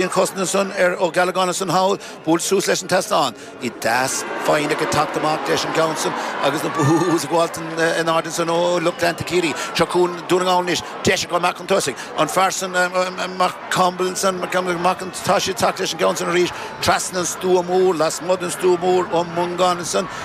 Bíonn cosnadh san ar Ó Giollagáin ansan thall buailte suas leis an tseastán. Ní deas feidhm ag an teacht amach leis an gceann san agus na boos ag gabháilt in airde ansan ó lucht leanta Ciarraí. Seo chugainn Dún na nGall anois. Deis acu amach chun tosaigh. An fear san Max Campbell ansan, Max Campbell, amach chun tosaigh ag teacht leis an gceann san arís trasna an stua mór, lasmuigh den stua mór, Ó Mongáin ansan.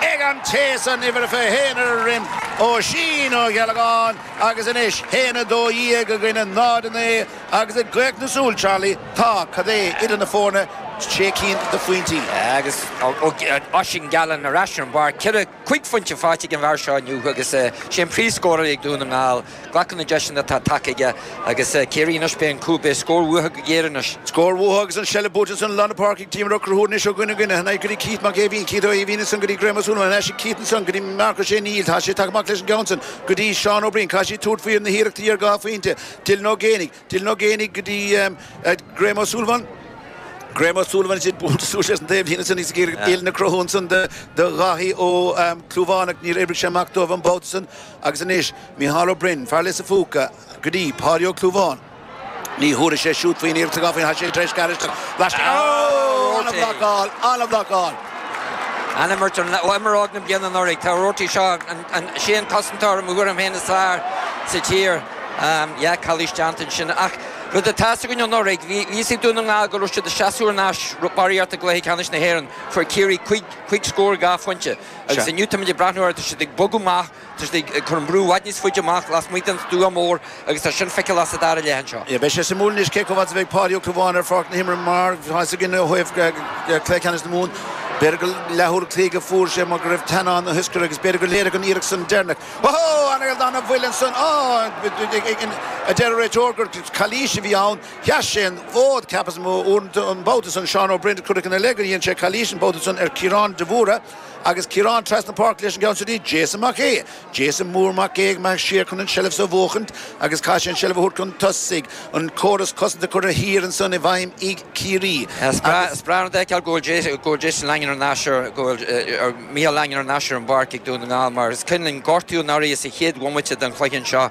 ag an té san uimhir a fiche a haon ar a dhroim, Oisín Ó Giollagáin, agus anois haon a dó dhéag i gcoinne náid a naoi agus i gcaochadh na súl Charlie tá, cad é, idir na foirne, sé cinn de phointí. Agus Oisín Gallen ar ais ar an bpáirc, ceithre, cúig phointe faighte ag an bhfear seo inniu agus sé an príomhscórálaí ag Dún na nGall. Glacann na deiseanna atá tagtha aige agus Ciarraí anois, beidh an cúl, beidh scór uathu go géar anois. Scór uathu agus an seilbh buaite ansan i lár na páirce ag Team Rugh Ruathar anois ó dhuine go duine, go dtí Keith Mac Eimhín, Keith Ó hEimhín ansan go dtí Graham Ó Súilleabháin, ar ais ag Keith ansan go dtí Marc Ó Sé, níl, tá sé tagtha amach leis an gceann san go dtí Seán Ó Briain, caithfidh siad tabhairt faoi na hiarrachtaí ar dhá phointe, Dylan Ó Géibheannaigh, Dylan Ó Géibheannaigh go dtí Graham O'Sullivan. Graham O'Sullivan is ea buailte suas leis an taobhlíne ansan, is an uillinn á cruthú ansan do Dháithí Ó Clúmháin ach níor oibrigh sé amach dóibh an babhta san. Agus anois, Mícheál Ó Braoin, fear Lios an Phúca, go dtí Páidí Ó Clúmháin. Ní thabharfaidh sé siúd faoin iarracht a ghabh faoi, tá sé tar éis gearradh isteach, laistigh ó an-bhlocáil, an-bhlocáil. An-imirt, ó imreoir na bliana anuraidh, tá Roarty seo. Sé an cosantóir i mo thuairim féin is fearr sa tír. Yeah, calaois déanta ansin. Ach rud atá fhios againn anuraidh, bhí fhios ag Dún na nGall go raibh siad ag seasamh thar n-ais barraíocht i gcluiche ceannais na hÉireann. Fuair Ciarraí cúig, cúig scór, dhá phointe. Agus inniu táimid ag breathnú air, tá siad ag bogadh amach, tá siad ag cur an brú i bhfad níos faide amach lasmuigh den stua mór. agus tá sin feiceálach sa dara leath anseo. Beidh sé suimiúil anois cé comh fada a bheidh Páidí Ó Clúmháin ar pháirc na himeartha mar tá fhios againn ó thaobh Cluiche Ceannais na Mumhan b'fhéidir gur leathuair cloig a fuair sé mar go raibh teannán na hioscaide agus b'fhéidir gur léirigh an iarracht san deireanach Ohó! An aoldath na bhfuil ansan á a deir an réiteoir gur calaois a bhí ann. Sheas sé an fód ceapas uaireanta an babhta san Seán Ó Briain cuireadh ina leith gur dhéan sé calaois an babhta san ar Chiarán de Mhórdha agus Ciarán trasna páirce leis an gceann súd Jason Mac Aoidh. Jason Mór Mac Aoidh amach siar chun an tseilbh so a bhuachaint agus chaith sé an tseilbh a thabhairt chun tosaigh, an córas cosanta curtha thiar ansan i bhfeidhm ag Ciarraí agus. Is breá an rud a fheiceáil go bhfuil Jason Langan ar ais ar, go bhfuil Micheál Langan ar ais ar an bpáirc ag Dún na nGall mar is cuimhin linn gortú an áirí sa chéad bhomaite den chluiche anseo,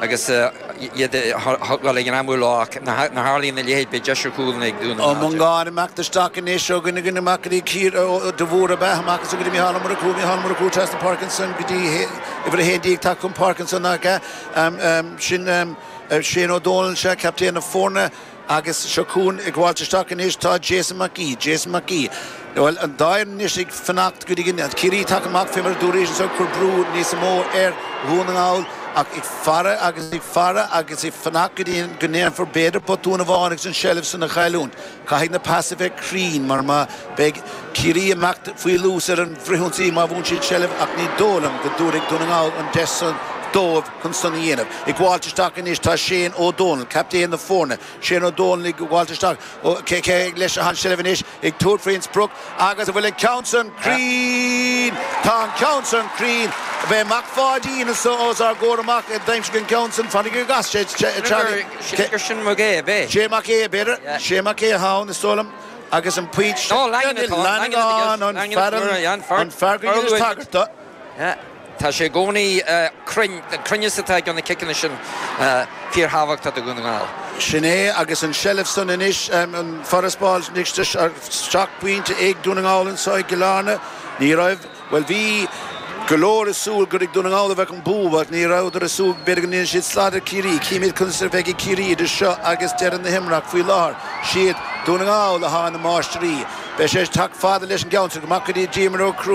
agus iad a thógáil ag an am uile ach nach dtarlaíonn a leithéid, beidh deis ar chúl ag Dún na nGall de. Ag imeacht isteach anois ó dhuine go duine, Mac Aoidh, de Mhórdha ab ea, amach ansan go dtí Micheál Ó Murchú, Micheál Murchú trasna na páirce ansan go dtí uimhir 11, tagtha chun páirce ansan nach ea, sin Shane Ó Dónaill, sea, captaen na foirne. Agus seo chugainn ag gabháilt isteach anois tá Jason Mac Aoidh. Jason Mac Aoidh, Bhuel, an dá fhoireann anois ag fanacht go dtí go mbeidh Ciarraí tagtha amach fé mar a dúraíos anseo, ag cur brú níos mó ar Dhún na nGall ach ag faire agus ag faire agus ag fanacht go dtí go ndéanfar b'fhéidir botún amháin agus an seilbh san a chailliúint. Caithfidh na pais a bheith cruinn mar beidh Ciarraí ag imeacht faoi luas ar an bhfrithionsaí má bhuann siad seilbh ach ní dóigh liom go dtabharfaidh Dún na nGall an deis san dóibh. chun san a dhéanamh. Ag gabháilt isteach anois tá Shane Ó Domhnaill, captaen na foirne. Shane Ó Domhnaill ag gabháilt isteach leis an seilbh anois, ag tabhairt faoin sprioc agus an bhfuil an ceann san cruinn? Tá an ceann san cruinn. Beidh Mac Pháidín os ár gcomhair amach a d'aimsigh an ceann san. Fainic ag as sé Charlie. Shea Mac Aodha, b'é? Sé Mac Aodha, b'fhéidir. Sé Mac Aodha ann is dóigh liom agus an pointe. Langan atá ann, an fear go rabhas anois ag tagairt do. Tá sé i gcónaí cruinn. An cruinneas atá i gcuid de na ciceanna sin fíorthábhachtach do Dhún na nGall. Sin é agus an seilbh san anois, an farasbarr seacht bpointe ag Dún na nGall anseo i gCill Airne. Ní raibh, bhuel, bhí go leor ag súil gur ag Dún na nGall a bheadh an bua ach ní rabhadar ag súil go mb'fhéidir go ndéanfadh siad slad ar Chiarraí. Chífimid conas a bheidh ag Ciarraí idir seo agus deireadh na himeartha. Faoi láthair, 'siad Dún na nGall atá ina máistrí. Beidh sé ag teacht fada leis an gceann seo go mbeidh cuid díobh ag cruthú.